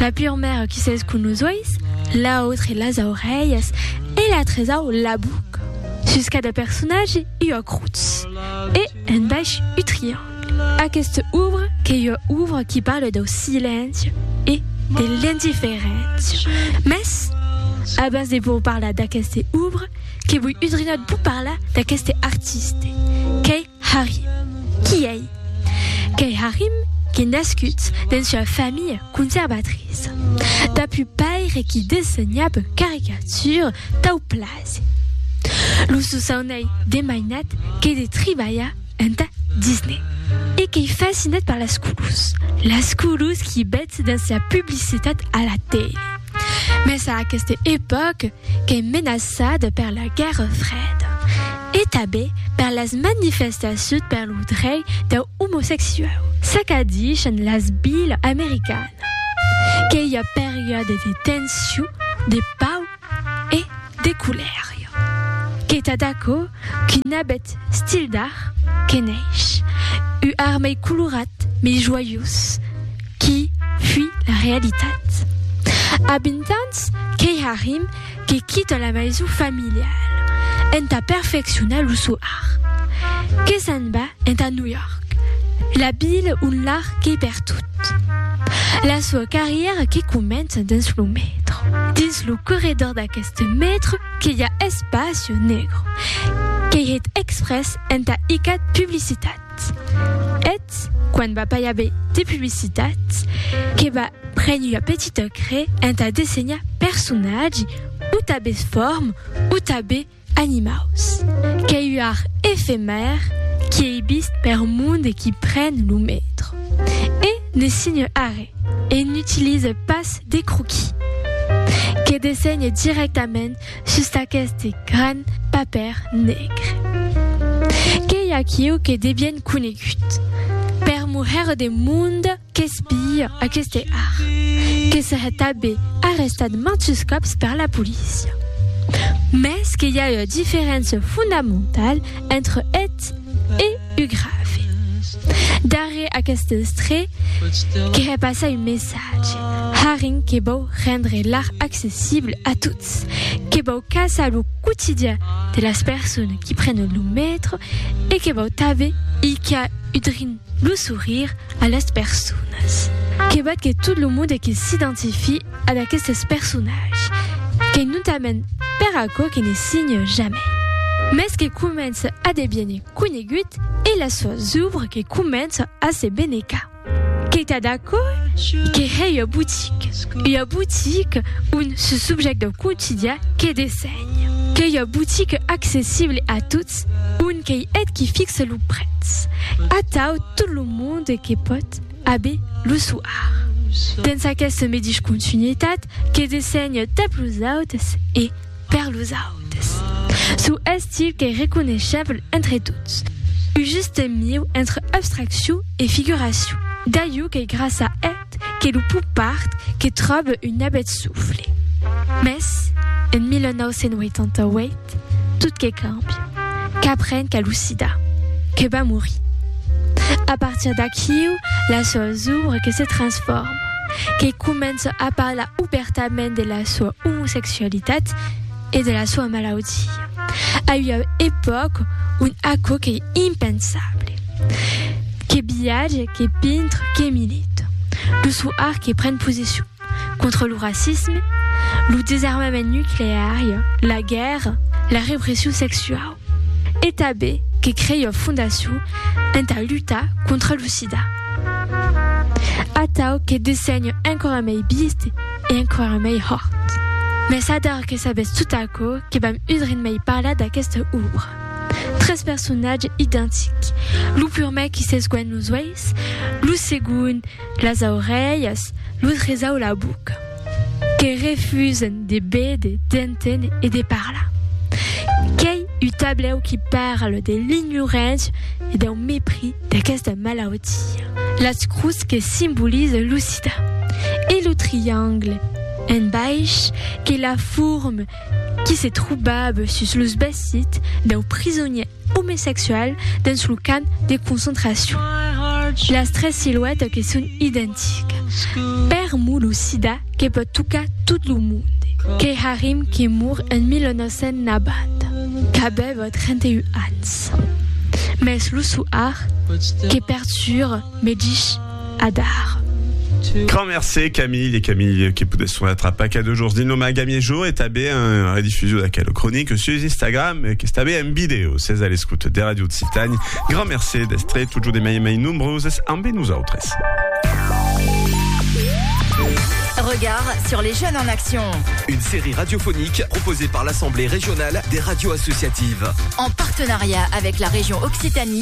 La pur maire qui s'es cun los uèis, l'autre las aurelhas e la tresau la buca. Sus cada personatge ua crutz e un baish u triangle. Aquesta obra qu'ei ua obra qui parla dau silenci e de l'indiferéncia. Mès, abans de vos parlar d'aquesta obra, que voi udrinat vos parlar d'aqueste artiste, qu'ei Harry. Qui ei? Qu'ei Harrym qu'ei nascut dens ua familha conservatriça. Dab un paire qui dessenhab caricatures tau plaser. Lo sosaun ei de mainat qu'ei de tribalhar entà Disney e qu'ei fascinat per las colors, las colors qui betz dens la publicitat a la tele. Mes a aqueste epòc qu'ei menaçada per la Guèrra Freda e tabé per las manifestaciut per lo drei deu omosexuau, s'acadishan las bilas americanas, qu'ei ua periòde de tension, de pau e. De culèria. Qu'ei tad aquò qu'un abet stil d'art que neish, u art mei colorat, mei joiós, qui fui la realitat. A vint ans qu'ei Harim que quita la maison familiala entà perfeccionar lo sò art, que se'n va entà New York, la vila ont l'art qu'ei pertot. La soa carrièra que comença dins lo metro. Dins lo corredor d'aqueste metro que i a Espacio Negro, qu'ei hèt exprès entà icat publicitat. Eth, quan va pas i aver de publicitat, que va prene ua petita cre entà dessenhar personatge o tanben forme o tanben Animaus. Qu'ei uar efemèr qui ei bist per mond e qui pren lo mètro. E ne signe arre e n'utilise pas de croquis. Que dessenhe directament sus aqueste gran papèr negre. Qu'ei aquiu que devien conegut per moher de mond. Qu'es pilha aqueste ar. Que serè tabé arrestat mantus còps per la polícia. Mès que i a ua diferéncia fondamentala entre eth e u grave. Darrèr aqueste estrè, que hè passar un messatge, harren que vòu rendre l'ar accessible a tots, que vòu caçar lo quotidian de las persones qui prenen lo metro e que vòu tabé hilhar udrin lo sourire A las personas. Que val que tot lo monde que s'identifie a d'aquestes personatges, qu'ei notament per aquò que ne signe jamai, mès que comença a deviene conegut e las soas ouvres que comença a se benecar. Qu'ei tad aquò que hèi ua boutique, ua boutique ont ce subjècte quotidià que desèi. qu'ei ua botica accessible a tots ont qu'ei eth qui fixe lo prètz, atau tot lo monde que pòt a be lo soar. Dens aquesta medish continuitat que dessenhe tap los autes e per los autes, sou estil qu'ei reconeisheble entre tots, un juste mieu entre abstraccion e figuracion, d'aiu qu'ei gràcia a Quiet que lo popard que tròbe un abet sofle. Mès, en 1988, tot que càmbia. Qu'apren qu'a lo sida. Que va morir. A partir d'aquiu, la soa zòbra que se transforma. Que comença a parlar obèrtament de la soa omosexualitat. e de la soa malaudia. A ua epòca ont aquò qu'ei impensable. Que viatge, que pintre, que milita. Lo sò art que pren posicion contra lo racisme, lo desarmament nucleari, la guèrra, la repression sexuau. E tanben que crèion fondacion entà lutar contra lo sida. Atau que dessenho enquara mei biist e enquara mei hòrt. Mès ador que sabètz tot aquò que vam udrin mei parlar d'aquesta òbra. Tres personatges identics, lo purmèr qui s'esguènh los uèis, lo segond las aurelhas, lo tresau la boca. Que refusen de béder, d'entén e de parlar. Qu'ei un tablèu qui parle de l'ignorància e dau mepris d'aquesta malautia. Las crus que simbolize lo sida. E lo triangle en baish que la forme qui se trobava sus los vesits dau prisonièr omesexual dens lo camp de concentracion. Las tres siluètas que son identicas. Per mo lo sida que pòt tocar tot lo monde. Kay Harim que mor en 1990, qu'avèva 31 ans. Mès lo soar que perturba me dich. Adar. Grand mercé Camille, e Camille que podes sonar tra pas que dejorns dins lo Magamier Jour e tabé en redifusion d'aquela cronique sus Instagram e qu'es tabé en vidéo. Ses a l'escoute de Radio Occitània. Grand mercé d'estre totjorn e mai e mai nombroses ambe nosautres. Regard sur les jeunes en action. Une série radiophonique proposée par l'Assemblée régionale des radios associatives. En partenariat avec la région Occitanie.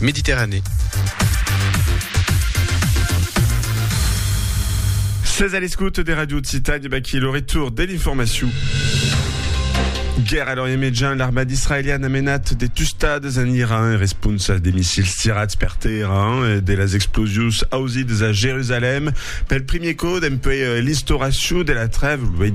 Mediterranèe. Sètz a l'escòute de Ràdio Occitània, vaquí lo retorn de l'informacion. Guèrra a l'Orient Mejan, l'armada israeliana a menat de tustades en Iran en responsa de missils tirats per tèrra e de las explosions ausidas a Jerusalèm pel primier còp dempuèi l'instauracion de la trèva lo 28